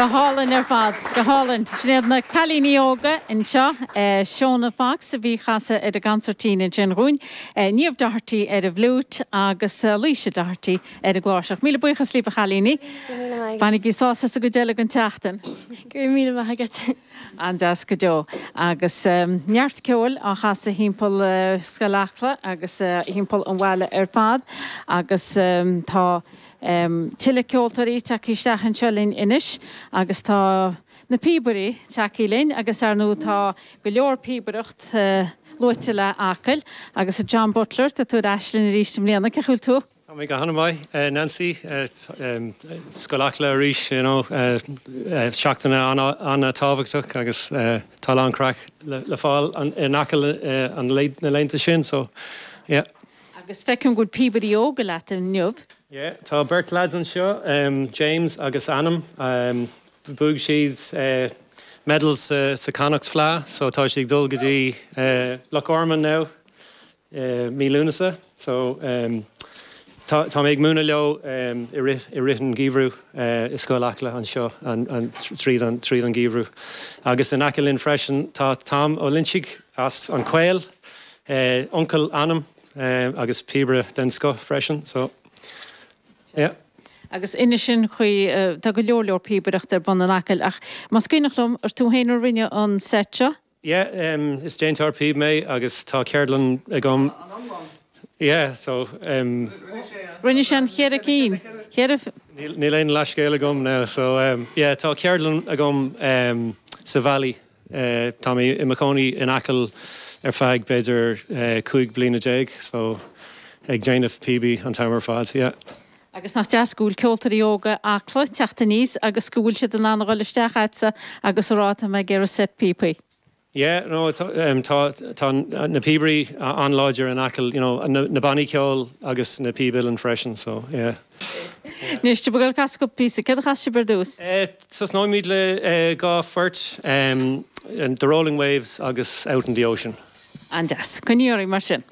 Go hálainn ar fad, go hálainn. Sin iad na cailíní óga anseo, Shona Fox a bhí ag casadh ar an gcansairtín ansin dhúinn, Niamh Doherty ar an bhfliúit agus Laoise Doherty ar an gcláirseach. Míle buíochas libh a chailíní. Fanaigí sásta sa gcuid eile den tseachtain. Go raibh míle maith agat. An-deas go deo. Agus neart ceoil á chasadh timpeall Scoil Acla agus timpeall an bhaile ar fad agus tá. Tuilleadh ceoltóirí tagtha isteach anseo linn anois agus tá na píobairí tagtha linn agus, ar ndóigh, tá go leor píobaireacht luaite le Acaill agus a John Butler, tá tú ar ais linn arís i mbliana, cén chaoi a bhfuil tú? Tá mé go hana maith, Nancy. Scoil Acla arís, you know, seachtain an-tábhachtach agus tá a lán craic le fáil in Acaill na laethanta sin, so, yeah. Agus feicim go bhfuil píobairí óga leat inniu. Yeah, tá beirt lads anseo, James agus Anam. Bhuaigh siad medal sa Connacht Fleadh so tá siad ag dul go dtí Loch Garman now i mí Lúnasa so tá mé ag múineadh leo i rith an gheimhridh i Scoil Acla anseo tríd an geimhreadh. Agus in aice linn freisin tá Tom Ó Loinsigh. As an Caol, uncail Anam agus píobaire den scoth freisin so yeah. Agus ar ndóigh sin é an chaoi, tá go leor leor píobaireacht ar bun in Acaill ach más cuimhneach liom, is tú féin a rinne an set seo? Yeah, is déantóir píob mé agus tá ceardlann agam. An iomlán? Yeah, so em. Rinne sé an cheithre cinn, cheithre? Níl aon leathscéal agam now so em yeah tá ceardlann agam em sa Valley. Tá mé i mo chónaí in Acaill ar feadh b'fhéidir cúig bliana déag so ag déanamh píob an t-am ar fad, yeah. Agus nach deas go bhfuil ceoltóirí óga Acla teacht aníos agus go bhfuil siad in ann a dhul isteach a'dsa agus a rá tá mé ag iarraidh set píopaí? Yeah, no, tá, tá na píobairí an-láidir in Acaill, you know, na bannaí ceoil agus na píb uilleann freisin so, yeah. Anois, céard a chasfas sibh ar dtús? Tosnóimid le dhá phort, The Rolling Waves agus Out on the Ocean. An-deas. Coinnígí oraibh mar sin.